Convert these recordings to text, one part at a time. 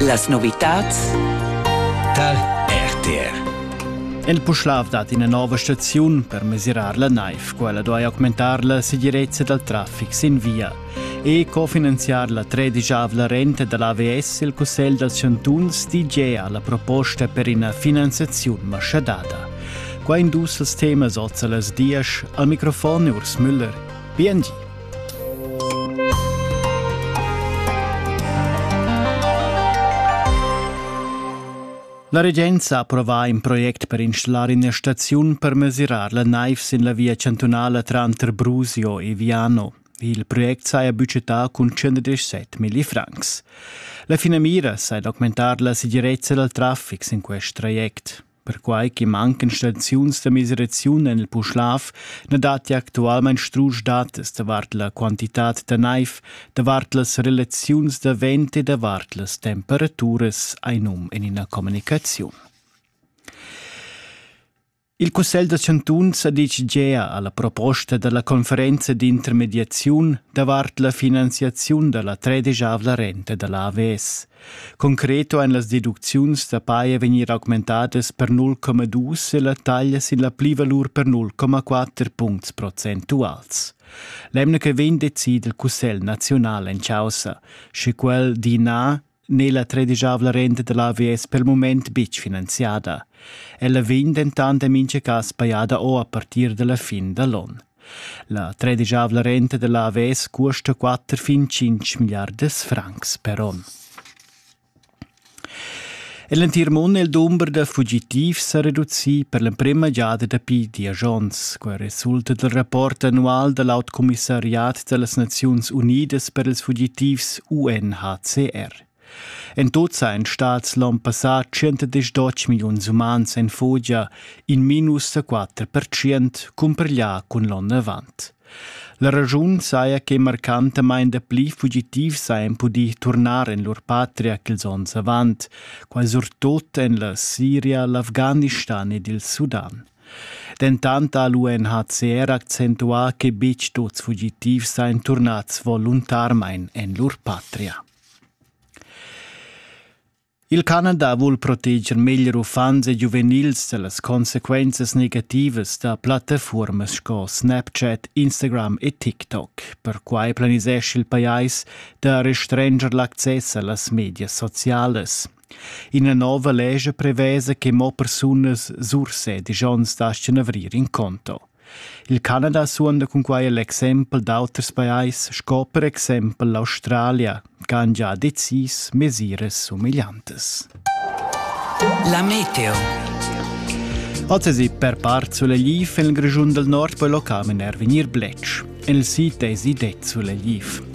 Las novitads dal RTR. El Puschlav dat ina nova staziun per mesirar la naiv. Quella duai augmentar la segirezza dal traffic sin via e cofinanziar la tredigiavla renta da l'AVS il Cussegl dals chantuns di ha la proposta per ina finanziaziun maschadada. Qua in dus temas oz a las dias al microfon Urs Müller. BNG. La regenza ha approvà in project per installar ina staziun per mesirar la naiv sin la via chantunala tranter Brusio e Viano. Il project saja budgetà cun 117 milli francs. La finamira sei d'augmentar la segirezza dal traffic sin quest traject. Perquai che mancan staziuns da miseraziun en il Puschlav na datti actualmain strusch datas davart la quantitad da naiv, davart las relaziuns da vent e davart las temperaturas, hai num en ina communicaziun. Il Cussegl da chantuns ha ditg gea a la proposta da la conferenza d'intermediaziun davart la finanziaziun da la tredesavla renta da l'AVS. Concreto ein las deducziuns da paia vegnir augmentadas per 0,2 e la taglia sin la plivalur per 0,4 puncts procentuals. L'emna che vegn decida il Cussegl nazional en caussa, sche quel di na n'è la tredisavla renta dell'AVS per il moment betg finanziada. Ella vegn dentant en mintga cas pajada o a partir dalla fin da l'onn. La tredischavla renta dalla AVS cuosta quatter fin tschintg milliardas francs per onn. L'entir mund è il dumber da fugitivs sa reducì per l'emprima giada dapi diesch onns. Quai resulta dal rapport annual da l'aut commissariat da las Naziuns Unidas per ils fugitivs UNHCR. En tut san stats l'onn passà 110 milliuns umans en fugia, in minus da 4% cumpareglià cun l'onn avant. La raschun saja che marcantamain dapli fugitivs hajan pudì turnar en lur patria ch'ils onns avant, quai surtut en la Siria, l'Afghanistan ed il Sudan. Dentant ha l'UNHCR accentuà che betg tuts fugitivs sajan turnads voluntarmain en lur patria. Il Canada vul proteger meglier uffants e giuvenils da las consequenzas negativas da plattafuormas sco Snapchat, Instagram e TikTok. Perquai planisesch il pajais da restranger l'access a las medias socialas. Ina nova lescha prevesa che mo persunas sursedis onns dastgan avrir in conto. Il Canada suonda cun quai l'exempel d'auters pajais sco per exempel l'Australia, che han già decis mesiras sumigliantas. La meteo. Oz per part sulegliv en il Grischun del Nord poi locam in er vegnir bletsch. Il sito è sidet sulegliv.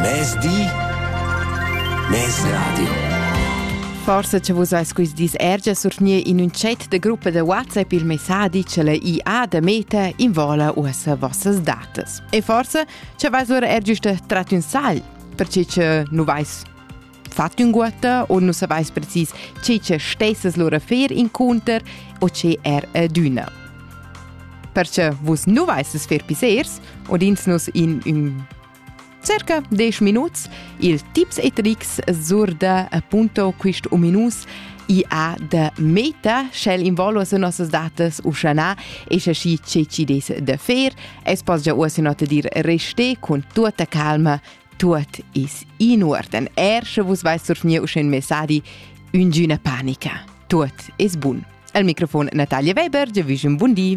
Mezdi Mez Radio. Forse che vus eis quist dis ergia survgnir in un chat de gruppa de WhatsApp il messadi che le IA de Meta invola uossa vossas datas. E forse che vais lura ergiuste trat un sal, perché che nu vais Fat ünguotta o nu savais precis che che stessas lura fer incunter o che er adüna. Perche vus nu vaissas fer pissers, udins nus in ün circa 10 minuts il tips e tricks sur da appunto quist ominus IA de meta, sch'el involu as nossas datas uschanà e scha schi che ci des da fer, es pas già uossa not dir reste cun tuotta calma Tuot is in uorden, er sche vus vais surfnir usch in messadi üngüna panica. Tuot is bun. Al microfon Natalia Weber, dir vüsch un bun di.